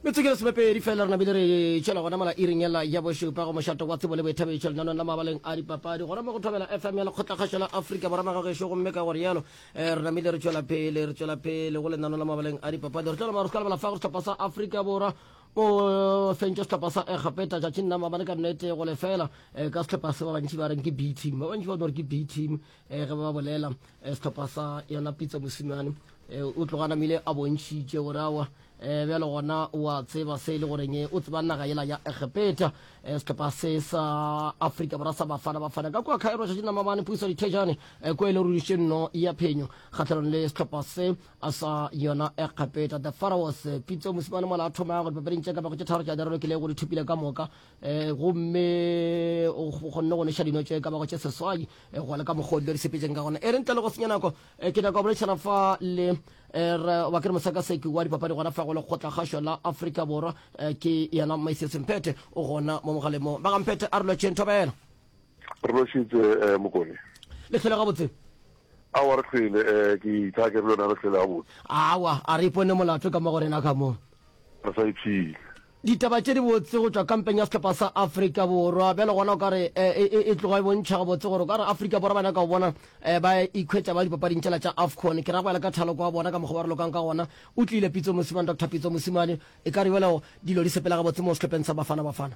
metsotso ke lesomepedi fela re nabile re tšwela gona mola iring ela ya bošupa go mošato wa tsebo le boithabišo lenanong la mabaleng a dipapadi gona mo go thobela fm ya lekgotlakgašo la afrika borwa ga gešo gomme ka gore yalo eh, re namile re tšwela pele re tšwela pele go lenanong la mabaleng a dipapadi re tšwela maru ka lebala fa go sehlopha sa afrika borwa o fentše sehlopha sa egapeta tšatšing nama bane ka nnete go lefela eh, ka sehlopha se ba bantši ba reng ke b team ba bantši ba no re ke b team um ge ba bolela um sehlopha sa yona pitsa mosimane um o tloga namile a bontšhitše gore awa um bjale gona wa tseba se e le goreng o tseba naga yela ya egepeta um sehlopha se sa afrika borwa sa bafana bafana ka kua khaero šaši namamane puiso dithejane um ko e le ruriše nno ya phenyo kgatlhanong le sehlopha se a sa yona egepeta the pharaos pitso mosimane mola a thoma ya gore papading tše ka bago tše tharo tša derelo ke le go di thopile ka moka um gomme o kgonne go neša dino tše ka bago tše seswai eh, go le ka mokgodi le re sepetseng ka gona e re ntle le go senya nako eh, ke nyaka go boledišana fa le eh, re ba ke re mosakaseki wa dipapadi gona fa go lekgotla kgašo la aforika borwa eh, ke yena maisesemphethe o gona mo mogalemo bagamphethe a re lotšheng thobela re lošitse um mokone le tlhole gabotse awa re tlhwele um ke itha ke re lona re tlhwele gabotse awa a re ipone molato ka mo go rena ka moo re sa iphile Ditaba tše dibotse go tšwa kampeng ya sehlopha sa Afrika Borwa. Bjale gona o ka re e tloga e bontšha gabotse gore o ka re Afrika Borwa ba nyaka go bona ba ikhwetša ba dipapading tšela tša AFCON. Ke ra go ela ka thaloko wa bona ka mokgwa ba re lokang ka gona. O tlile Pitso Mosimane, Doctor Pitso Mosimane. E ka re bjale dilo di sepela gabotse moo sehlopheng sa Bafana Bafana.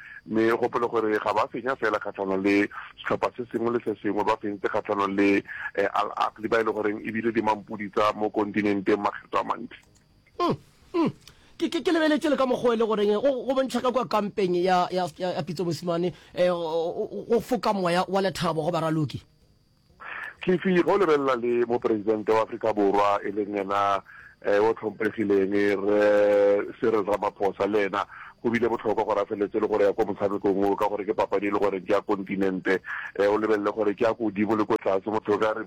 Mme o gopole gore ga ba fenya fela kgahlanong le sehlopha se sengwe le se sengwe, ba fentse kgahlanong le Al Ahly ba e le goreng e bile dimampudi tsa mo kontinenteng makgetlo a mantši. Uhm-uhm. Ke, ke, ke lebeletše le ka mokgwa e le goreng go, go bontšha ka kua kampeng ya, ya, ya, ya Pitso Mosimane, eh, go, go foka moya wa lethabo go baraloki. Fifi, ge o lebelela le Mopresidente wa Afrika Borwa e leng yena yo hlomphegileng Rre Cyril Ramaphosa, le yena go bile bohlokwa gore a feleletse e le gore ya ko motshamekong wo ka gore ke papadi e le gore ke ya kontinente. O lebelele gore ke ya kodimo le ko tlase, go thwe o ka re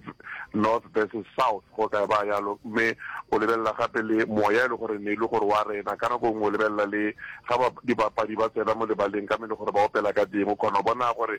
North versus South go ka ba yalo. Mme o lebelela gape le moya e le gore ne e le gore wa rena. Ka nako nngwe o lebelela le ga dibapadi ba tsena mo lebaleng ka mo e le gore ba opela ka teng, o kgona go bona gore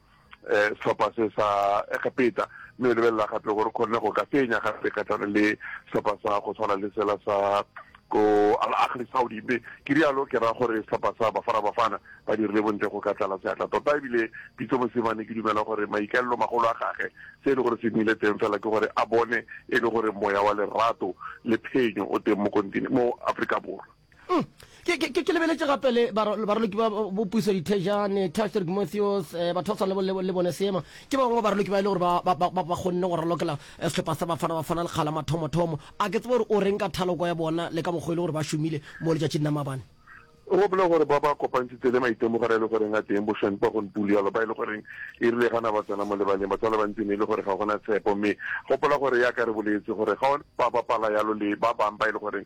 um sehlopha se sa Egepeta, mme o lebelela gape gore kgonne go ka fenya gape kgatlhanong le sehlopha sa go tshwana le sela sa ko Al Ahly Saudi. Mme ke rialo ke ra gore sehlopha sa Bafana Bafana ba dirile bontle go ka tlala seatla tota, ebile Pitso Mosimane ke dumela gore maikaelelo magolo a gage se e le gore se nnile teng fela ke gore a bone e le gore moya wa lerato le phenyo o teng mo Afrika Borwa. Mm. Ke, ke, ke lebeletše gape le baraloki ba bopuiso dithejane taster gmothios eh, batho ba tshwana le bone seema ke ba bangwe baraloki ba e le gore ba kgonne go ralokela eh, sehlopha sa bafana bafana lekgala mathomothomo a ke tsebe gore o reng ka thaloko ya bona le ka mokgwa e le gore ba šomile mo letšatšing la mabane o gopola gore ba ba kopantshitse le maitemogelo e le goreng a teng bošweng kwa gonpule yalo ba e le goreng e rile gana ba tsena mo lebaleng batho ba le bantsi ne e le gore ga gona tshepo mme gopola gore ya ka re boletse gore ga ba bapala yalo le ba bangwe ba e le goreng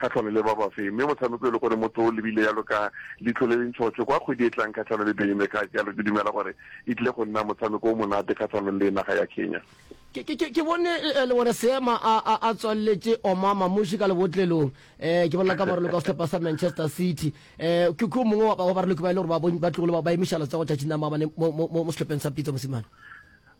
kgahlano le ba bafe, mme motshameko e le gore motho o lebile yalo ka leitlho le le ntšhotšho kwa kgwedi e tlang kgahlano le Benin. Ka jalo ke dumela gore e tlile go nna motshameko o monate kgahlano le naga ya Kenya. Ke, ke, ke, ke bone e le gore Seema a, a, a tswalletše oma mamuši ka lebotlelong. Eh, ke bolela ka baroloko wa sehlopha sa Manchester City. Eh, ke, ke o mongwe wa, wa baroloko ba e le gore ba, ba tlogile ba, ba emiša letsogo tšatšing la maabane mo, mo, mo, mo sehlopheng sa Pitso mosimane.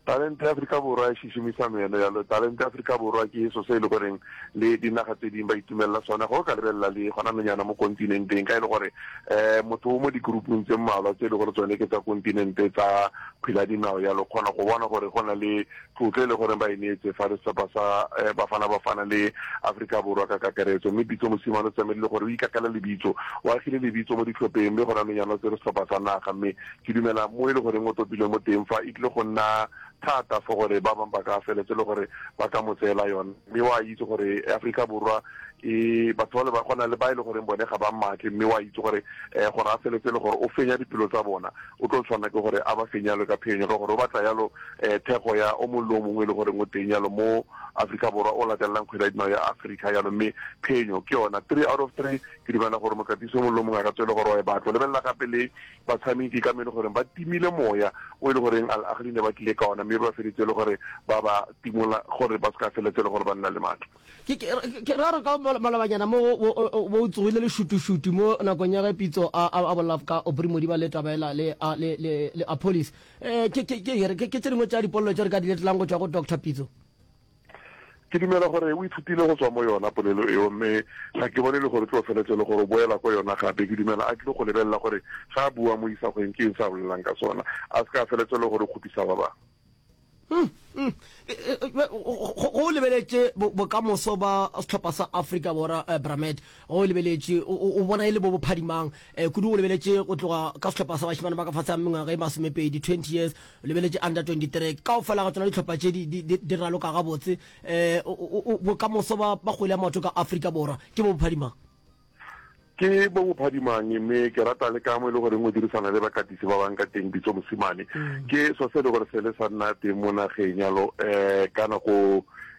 Talente ya Afrika Borwa e šišimiša meno ya lo. Talente ya Afrika Borwa ke eso se e le goreng le dinaga tse ding ba itumelela sona. Ge o ka lebelela le gona nonyana mo kontinenteng ka e le gore um motho o mo dikurupung tse mmalwa tse e le gore tsone ke tsa kontinente tsa kgwele ya dinao ya lo kgona go bona gore go na le tlotlo e le goreng ba e neetse fa le sehlopha sa um Bafana Bafana le Afrika Borwa ka kakaretso. Mme Pitso Mosimane o tsamaile le gore o ikakela lebitso, o agile lebitso mo dihlopeng mme gona nonyana o tsere sehlopha sa naga mme Ke dumela mo e le goreng o topilwe mo teng fa, e tlile go nna thata for gore ba bang ba ka feletse le gore ba ka mo tseela yona. Mme wa itse gore Afrika Borwa e batho ba le ba gona le ba e le goreng bone ga ba mmatle, mme wa itse gore eh, gore a feletse le gore o fenya dipelo tsa bona, o tlo tshwanela ke gore a ba fenya yalo ka phenyo, ka gore o batla yalo eh, thekgo ya o mongwe le o mongwe e le goreng o teng yalo mo Afrika Borwa o latelelang kgwele ya dinao ya Afrika yalo, mme phenyo ke yona three out of three. Ke dumela gore mokatisi o mongwe le o mongwe a ka tswele gore wa e batla. O lebelela gape le Batshamiki ke ka mo e le goreng ba timile moya o e le goreng Al Ahly ne ba tlile ka ona mme ba feditse e le gore ba ba timola gore ba se ka feletse e le gore ba nna le matla. Ke ke ra re ka malobanyana mo bo o tsogile le šutušutu mo nakong ya ge Pitso a a bolela ka Aubrey Modiba le taba ela le a le le le Appolis. Ke ke ke ke tše dingwe tša dipolelo tše re ka di letlang go tšwa go Doctor Pitso. Ke dumela gore o ithutile go tswa mo yona polelo eo, mme ga ke bone le gore tlo feletse le gore o boela ko yona gape. Ke dumela a tlile go lebelela gore ga a bua mo isagweng ke eng se a bolelang ka sona, a se ka a feletse le gore o kgopisa ba bangwe. Mm, mm. E, e, e, be- go- go- go o lebeletše bo- bokamoso ba sehlopha sa afrika borwa eh, bramed go o lebeletše o- o o bona e le bo bophadimang Eh, kudu o lebeletše go tloga ka sehlopha sa bašemane ba ka fase ga mengwaga e masomepedi 20 years O lebeletše Under 23 kaofela ga tsona dihlopha tše di, di, di, di raloka gabotse. Um bokamoso ba, ba kgwele ya maoto ka Afrika Borwa ke bo bophadimang? ke bo bophadimang mme ke rata le ka mo e le goreng o dirisana le bakatisi ba bang ka teng bitso mosimane mm. ke so se e le gore se le sa nna teng mo nageng yalo um ka nako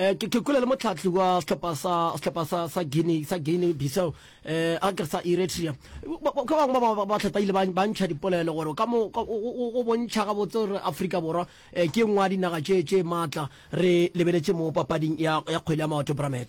eh ke ke kula le motlhatli wa sehlopha sa sehlopha sa sa Guinea sa Guinea Bissau eh a ke sa Eritrea ka bangwe ba ba ba tlhata ile ba ba ntsha dipolelo gore ka mo ka- o- o o bontšha ga botse gore Afrika Borwa eh, ke nngwe ya dinaga tše tše matla re lebeletše mo papading ya ya kgwele ya maoto Bramet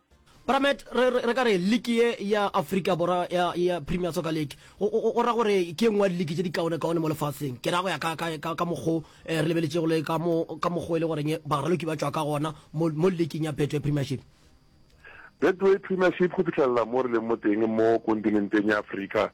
Bramet re re ka re league ye ya Africa Borwa ya ya Premier Soccer League o ra gore ke engwe ya league tse di kaone kaone mo lefatsheng ke ra go ya ka ka ka ka mokgo eh, re lebeletšego le ka mo ka mokgo e le goreng baraloki ba tswa ka gona mo mo leagueng ya Betway Premiership Betway Premiership go fitlhelela mo re leng mo teng mo kontinenteng ya Afrika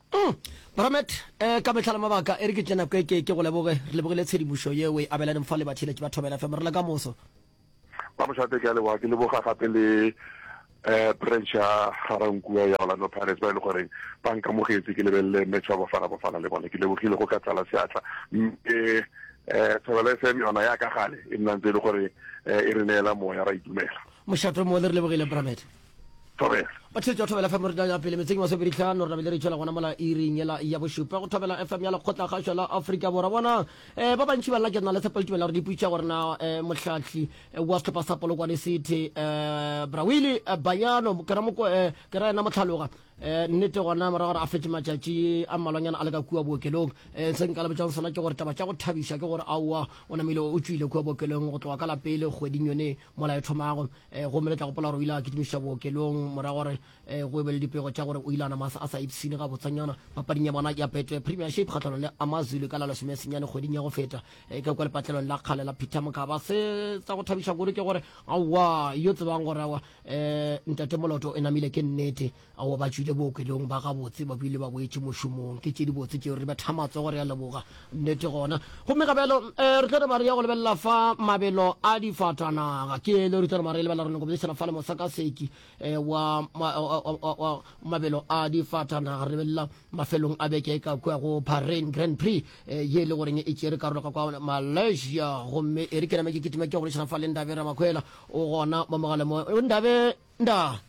Mm. Bramet, eh, ka mehla le mabaka, e re ke tle nako e ke ke go leboge, re lebogile tshedimošo ye o e abelaneng fa le batheeletši ba Thobela FM. Re le ka moso. Ba Mošate ke a leboga, ke leboga gape le eh, branch ya Garankua ya Orlando Pirates ba e le goreng ba nkamogetse ke lebelele match wa Bafana Bafana le bone. Ke lebogile go ka tlala seatla. Mme eh, Thobela FM yona ya ka gale e nna ntse e le gore eh, e re neela moya ra itumela. Mošate o mo le re lebogile, Bramet. thobela ba tshetse wa thobela fm re ya pele metseng wa sobedi tlhano re nabele re tšhela gona mola iring ela ya bošupa go thobela fm ya lekgotla kgašwa la aforika borwa bona um eh, ba bantši ba nna ke na le tshepo le tumela gore di putša gore na um eh, motlhatlhi eh, wa setlhopha sa polokwane city um brawile bayano ke ra ena motlhaloga um nnete gona mora gore a fetse matšatši a mmalwanyana a le ka kua bookelong um se nka lebetsang sona ke gore taba tša go thabiša ke gore aowa o namile o tswile kua bookelong go tloga ka lapele kgweding yone Molao e thomago, eh, gomme le tla gopola gore o ile a kitimišiša bookelong morago gore eh, go e be le dipego tša gore o ile a nama a sa ipshine gabotsanyana papading ya bona ya Betway Premiership kgatlhanong le Amazulu ka la lesome senyane kgweding ya go feta eh, ka kwa lepatlelong la kgale la Peter Mokaba. Se tsa go thabiša kudu ke gore aowa yo tsebang gore awa eh, ntate Moloto e namile ke nnete. Aowa, ba tšwile bookelong ba gabotse, ba bile ba boetše mošomong. Ke tše dibotse tšeo. Re betha matsogo, re a leboga. Nnete gona. Gomme ga bjalo re tlo nama re ya go lebelela fa mabelo a difatanaga. Ke elo re tlo nama re lebelela, re nyako boledišana fale mosakaseki wa mabelo a difatanaga. Re lebelela mafelong a beke e ka kua go Bahrain Grand Prix, ye e le goreng e tšere karolo ka kwa Malaysia. Gomme e re ke name ke kitime ke ya go boledišana fale Ndabe Ramakhwela, o gona mo mogaleng mo. Ndabe! Nda.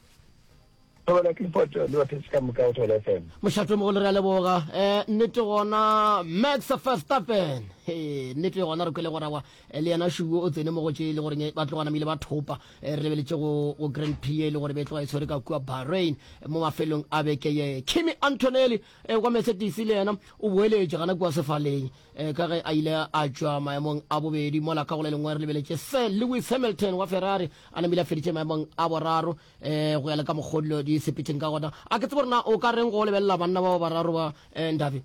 Thobela Clifford le batheetši ka moka go Thobela FM. Mošato mogolo re a leboga. Eh, nnete gona Max Verstappen. He, nnete gona re kwele gorawa eh, le yena Shugo o tsene mo go tše le gore ba tlogana mile ba thopa. Eh, re lebeletše go go Grand Prix e le gore be tloga e tshwere ka kua Bahrain eh, mo mafelong a beke ye. Kimi Antonelli eh, wa Mercedes le yena o boeletše gana kua sefaleng. E, ka ge a ile a tšwa maemong a bobedi mola ka go le lengwe re lebeletše sir lewis hamilton wa ferrari a namile a feditše maemong a boraro e, go ya le ka mokgodilo di sepetšeng ka gona a ke tsebo rena o ka reng go lebelela banna bao bararo ba e, ndabe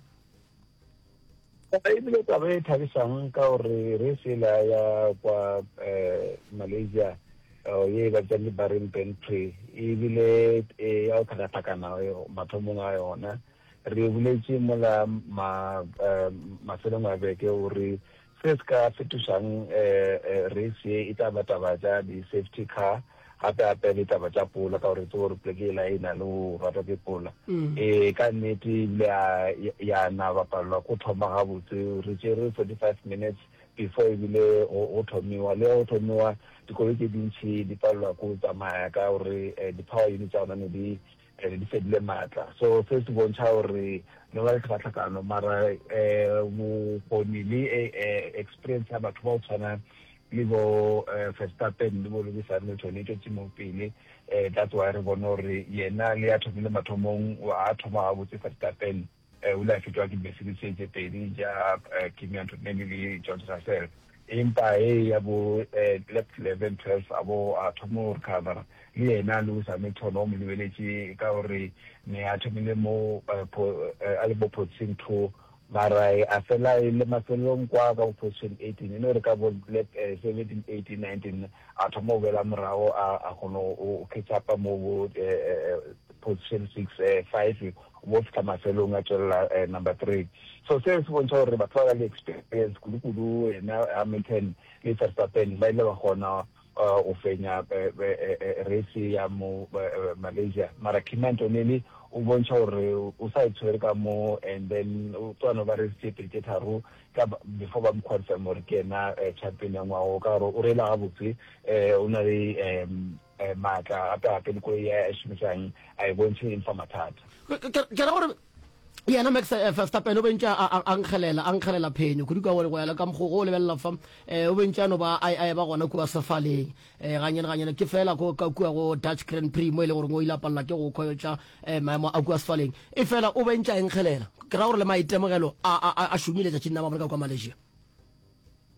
ebile taba e thabisang ka gore re sela ya kwa e, malaysia oh, ye e batšang libaring pentry ebile e ya go tlhakatlhakana mathomong a yona Re boletše mola ma, mafelong a beke gore se se ka fetošang race ye e tla ba taba tša di-safety car, gape-gape le taba tša pola, ka gore re tseba gore poleke yela e na le go ratwa ke pola. Ee, ka nnete e bile ya na ba palelwa ke go thoma gabotse. Re tšere forty-five minutes before e bile go thomiwa. Le ge go thomiwa, dikoloi tše dintši di palelwa ke go tsamaya ka gore di-power unit tša gona ne di and di fedile maatla so se se bontšha gore no ba le tlhakatlhakano mara um bokgoni le experience ya batho ba go tshwana le bo Verstappen le bo Lewis Hamilton e tšwetse mo pele um that's why re bone gore yena le ya thomile mathomong a thoma gabotse Verstappen O ile a fetwa ke dibesiri tše tše pedi tša Kimi Antonelli le George Russell, empa e ya bo lap 11, 12 a bo a thoma go recovera. Le yena Lewis Hamilton wa mo lebeletše ka gore ne a thomile mo a le bo position 2, mara a fela e le mafelelong kwa ka bo position 18, e no re ka bo lap 17, 18, 19 a thoma go boela morago a kgona go catch up mo bo position 6, 5 bo fihla mafelong a tšwelela number three. So seo se bontšha gore batho ba ba le experience kudu-kudu ena Hamilton le Verstappen ba ile ba kgona go fenya race ya mo Malaysia. Mara Kimi Antonelli o bontšha gore o sa e tshwere ka mo and then o tlo no ba race tše pedi tše tharo ka before ba mo confirm gore ke yena champion ya ngwaga o ka gore o reela gabotse o na le maatla gape-gape le koloi ya e šomisang a e bontšhe eng fa mathata. Ke ra gore yena max eh, verstappen o bentse a nkgelela a nkgelela phenyo kudu ka gore go yala ka mokgogo o lebelela fa eh, o bentse ano ba a eba gona kua sefaleng um eh, ganyane ganyane ke fela ko ka kua go dutch grand prix mo e le gore o ile a palela ke go khoyotša um maemo a kua sefaleng e fela o bentse a nkgelela ke ra gore le maitemogelo a šomile tšatšing na ba bone ka kua malaysia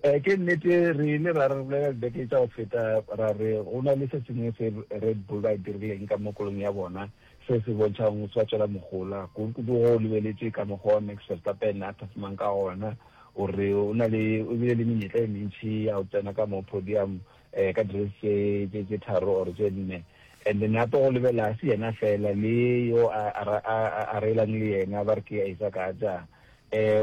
Ee, ke nnete. Re ile ra rebolelwa dibeke tša go feta ra re go na le se sengwe se Red Bull ba e dirileng ka mo kolong ya bona se se bontšhago go sa tšwela mogola, kudu-kudu ge o lebeletše ka mokgwa wa Max Verstappen a phasimang ka gona. O re o na le, o bile le menyetla e mentši ya go tsena ka mo podium um ka dirace tše, tše, tše tharo or tše nne. And gape go lebelela ga se yena feela le yo a, a, a, a, a reelang le yena ba re ke Isaac Hadjar.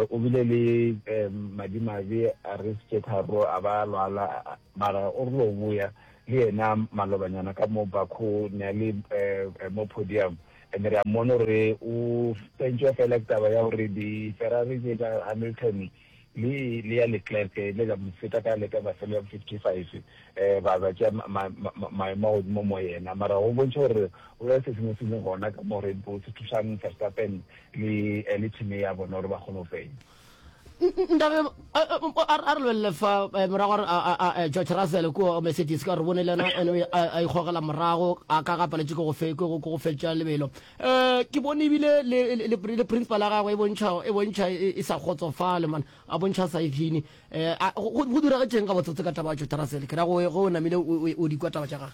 O bile le madimabe a re tše tharo a ba a lwala, mara o rile o boya le yena malobanyana ka mo Baku ne a le mo podium and re a mmona gore o fentšwa fela ke taba ya gore di-Ferrari tše tša Hamilton le le ya Leclerc di ile tša mo feta ka leka mafelo ya bo fifty-five ba ba tšea maemo a godimo mo yena. Mara go bontšha gore go na le se sengwe se leng gona ka mo Red Bull se thušang Verstappen Le le team ye ya bona gore ba kgone go fenya. Ndabé a re lwelele fa eh, morago a re eh, George Russell ko Mercedes ka re bone le yena ene a ikgogela morago a ka ga paletše ke go fetša lebelo um ke bone ebile le principal ya gagwe e bontšha e, e, e sa kgotsofale man a bontšha sa efine um go diragetšeng ga botsotse ka taba ya George Russell ke ra go o namile o dikwa taba tša gage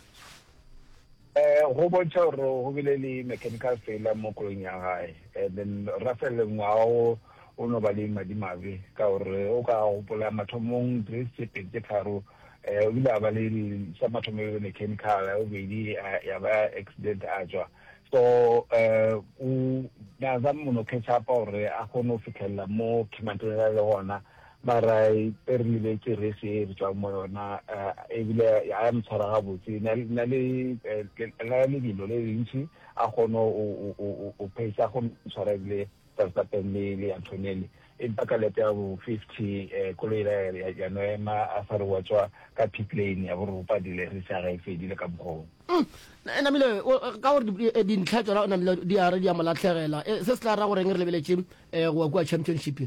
um go bontšha gore go bile le mechanical failure mo koloing ya gae and then rafel ngwaga o o no ba le madimabe ka gore o ka gopola mathomong grace tše pedi tše tharo um o bile a ba le sa mathomo e mechanical ya bobedi ya ba accident a tswa so um o naza mono catch upa gore a kgone go fitlhelela mo khemantele le gona Mara e re lebetše race ye re tšwang mo yona ebile ya mo tshwara gabotse. Na le la lebelo le lentši a kgone go pace a kgone go tshwara ebile Verstappen le le Antonelli. Empa ka lap ya bo 50 koloi yela ya no ema a sa re wa tšwa ka pit lane ya bo re o padile race ya gae e fedile ka mokgwa wo. Namile ka gore dintlha tšona o namile di a re di a mo latlhegela se se tla ra goreng re lebeletše go wa kua Championship.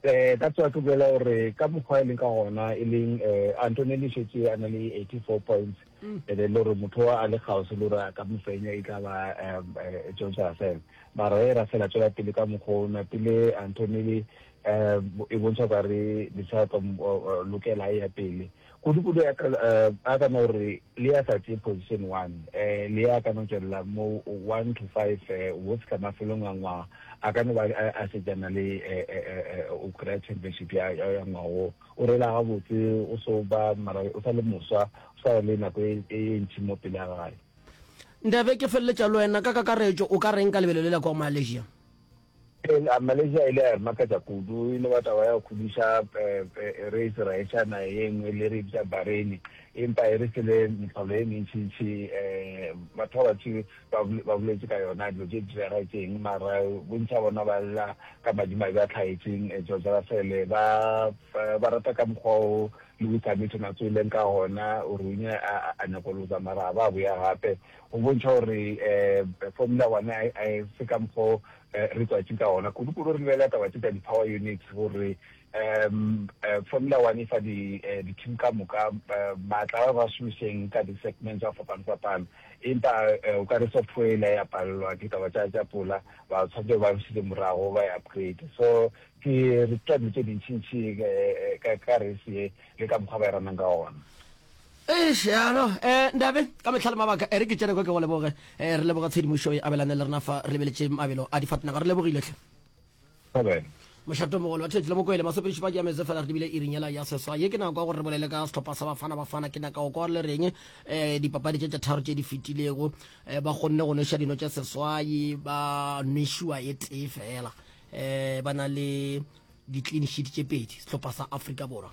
Eh, ka tswa ke bolela gore ka mokgwa e leng ka gona e leng eh, antoneli šetse a na le 84 points mm. e le gore motho wa a le kgaose le gore a ka mofenya e tla ba eh, george russell mara e russell a tswela pele ka mokgwa o na pele antoneli um e bontšha kare disaka lokela e ya pele Kudu-kudu ya ka, a ka no re, le ya sa tšee position one, le ya ka no tšwelela mo one to five wo fihla mafelong a ngwaga, a ka no ba a šetšana le go kry-a championship ya ngwaga wo. O reela gabotse, o so ba mara o sa le moswa, o sa le nako e ntši mo pele ga gae. Ndebe, ke feleletša le wena, ka kakaretšo o ka reng ka lebelo le la kwa Malaysia? Eela, Malaysia e ile ya re makatša kudu, e no ba taba ya go khudiša reise raetšana ye nngwe le re e bitša Bahrain, empa e re file mehlolo e mentšintši. Batho ba bantši ba, ba boletše ka yona, dilo tše di direga ke eng, mara bontši bja bona ba lla ka madimabe a tlhaetšeng. George Russell, ba, ba rata ka mokgwa wo Lewis Hamilton a tsoileng ka gona, o runya a, a, a nyakoloza, mara a ba a boya gape. Go bontšha gore formula one ga e se ka mokgwa o re tswatši ka wona. Kudu-kudu re lebelela taba tše tša di-power units gore formula one e fa di-team ka moka maatla a ba šomišeng ka di-segments a fapano-fapano. Empa o ka re software e la ya palelwa ke taba tša tša pola, ba tshwanetse ba bušetše morago ba e upgrade. So ke re tša dilo tše dintšintši ka race ye le ka mokgwa ba e ranang ka wona. Eish, ya no. Eh, Ndabe, ka mehla le mabaka, ere ke tšene kwa ke go leboge. Eh, re leboga tshedimošo e abelane le rena fa re lebeletše mabelo a difatnaga. Re lebogile hle. Amen. Mošato mogolo wa Theetsi le Mokwele masepediši ba diametse fela re dibile iring yela ya seswa ye ke nako ya gore re bolele ka sehlopha sa Bafana Bafana ke naka go kwa le reng um dipapadi tše tše tharo tše di fetilego um ba kgonne go nweša dino tša seswai ba nwešua e tee fela um ba na le di-clean sheet tše pedi sehlopha sa Afrika Borwa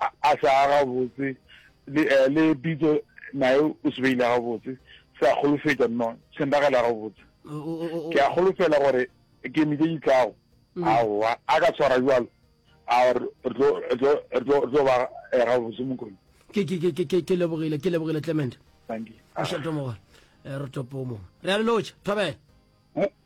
a, a se a gabotse, le, uh, le pitso naye o se beile gabotse, se a kgolofetša, no, se nragela gabotse. Ke a kgolofela gore ke mije ditlago, mm. aowa, a ka tshwara jalo, a re tlo ba eh, gabotse mokone. Ke, ke, ke, ke, ke lebogile, ke lebogile Clement. Thank you. Oshatomoga, eh, re topomo. Re a le lotšha, thobela.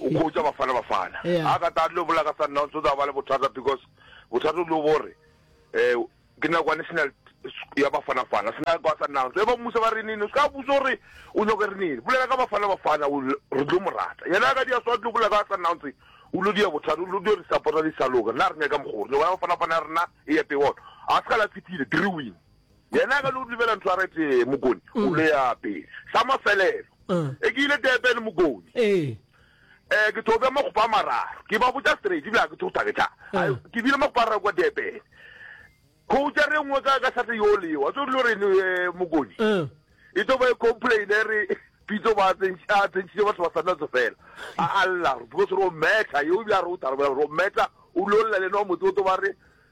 ukhutsa bafana bafana Yeah. a ka ta lo bola ka sundowns o tla ba le bothata because bothata o lo bore um ke nako ya national ya bafana fana sena kwa sundowns e ba mmusa ba re nini o se ka busa gore o nyoko re nini bolela ka bafana bafana o l- re tlo mo rata yena a ka dia swa tlo bola ka sundowns o lo dia bothata o lo dio re supporta di sa loka nna re nyaka mogoro nyoko ya bafana fana ya rena e epe one a se ka la tshepile three win Yena a ka no dumela ntho a re tee, Mokoni, o mm. le ape. Sa mafelelo, uh. e ke ile Durban, Mokoni. Eh. Eh, ke tlo bja magopo a mararo. Ke ba botša straight, ebile a ke tlo tla ke tla. Uh. Ke bile magopo a raro kwa Durban. Khouta re nngwe ka ka sate yo le yo. A tso dilo re ne eh, Mokoni. Uh. E tlo ba e complain e re pitso ba tsentša tsentšitse batho ba sanna tso fela. A Allah, because ro meta, yo bja ro tarabela ro meta. O lo lla le no motse o to ba re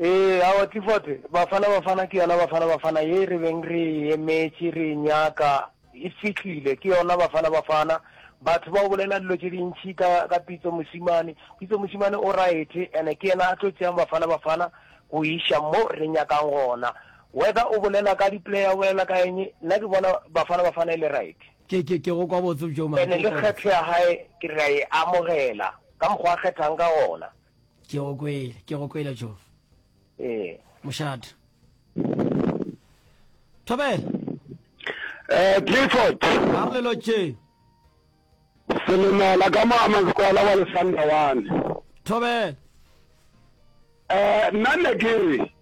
Ee, aowa, Clifford, Bafana Bafana ke yona Bafana Bafana ye re beng re e emetše, re e nyaka, e fihlile. Ke yona Bafana Bafana. Batho ba o bolela dilo tše dintši ka, ka Pitso Mosimane. Pitso Mosimane o right, and ke yena a tlo tšeang Bafana Bafana go e iša mo re nyakang gona. Whether o bolela ka di-player, o bolela ka eng, nna ke bona Bafana Bafana e le right. Ke, ke, ke go kwa botse bjo, mara ke go kwa botse. And le kgetho ya hae ke re ra e amogela, ka mokgwa a kgethang ka gona. ke go kwele ke go kwele jof ee mošate thobela eh clifford a re lelo tše selemela ka moama sekwala wa lesanda wane thobela eh nna ne ke re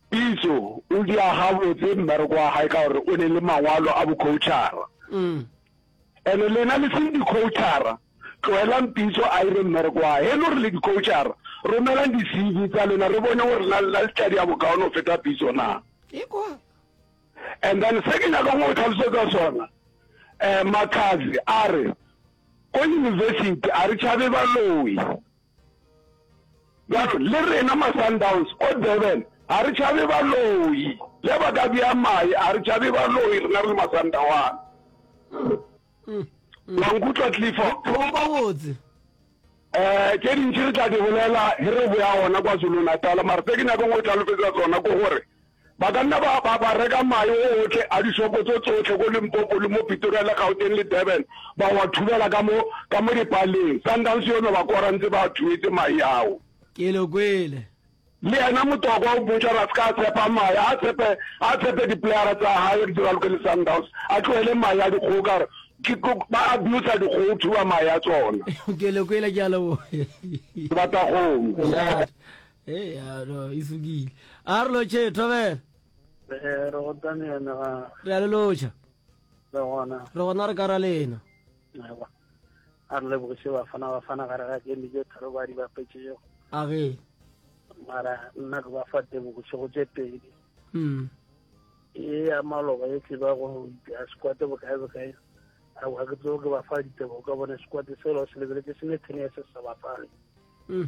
pitso o di aga botse mmereko wa gae ka gore o ne le mangwalo a bocoachara mm. And lena le seng di coachara tloelang pitso a ire mmereko wa he lo re le di coachara romelang di CV tsa lena re bone gore na lena le tla dia bokaone go feta pitso na Iko. and then se ke nyaka go tlhalosetsa sona um makazi a re ko university a re tšhabe baloyi Bjalo, le rena ma-Sundowns o Durban ga re tšhabe baloi. Ge ba ka bea mae, ga re tšhabe baloi rena re le Masandawana. Mm, mm. Wa nkutlwa, Clifford? Gabotse. Eh, tše dintši re tla di bolela ge re boya gona kwa Zulu-Natal, mara se ke nyakong o tlalofetsa tsona ke gore Ba ka nna ba, ba, ba reka mae ootle a dishopo tso tsohle ko Limpopo le mo Pitoria le Gauteng le Durban, ba wa thubela ka mo, ka mo dipaleng. Sundowns yono ba kora ntse ba a thubetse mae ao. Ke lo kwele. Le yena Motokwa o botša gore a se ka a tshepa mae, a tshepe, a tshepe diplayara tsa hae di raloke le Sundowns, a tlohele mae a dikgogo ka gore ke, ke, ba abusa dikgogo go thuba mae a tsona. Ke lo kwele, ke a leboga. Ke batla go. Go nyatša. eya no e sukile a re lotšhe thobela Eh, re gotane yone ga re a le lotšha le gona re gona re ka ra lena Ewa. a re lebogiše bafana bafana gare ga kemi tše tharo ba di bapetšego a ge mara nna ke ba fa tebogiše go tše pedi mm. e ya maloba e tle ba go ya sekwate bokae bokae aowa ke tseo ke ba fa ditebogo ka bone sekwate selo se lebeletse se ne thene ya se sa bapale mm.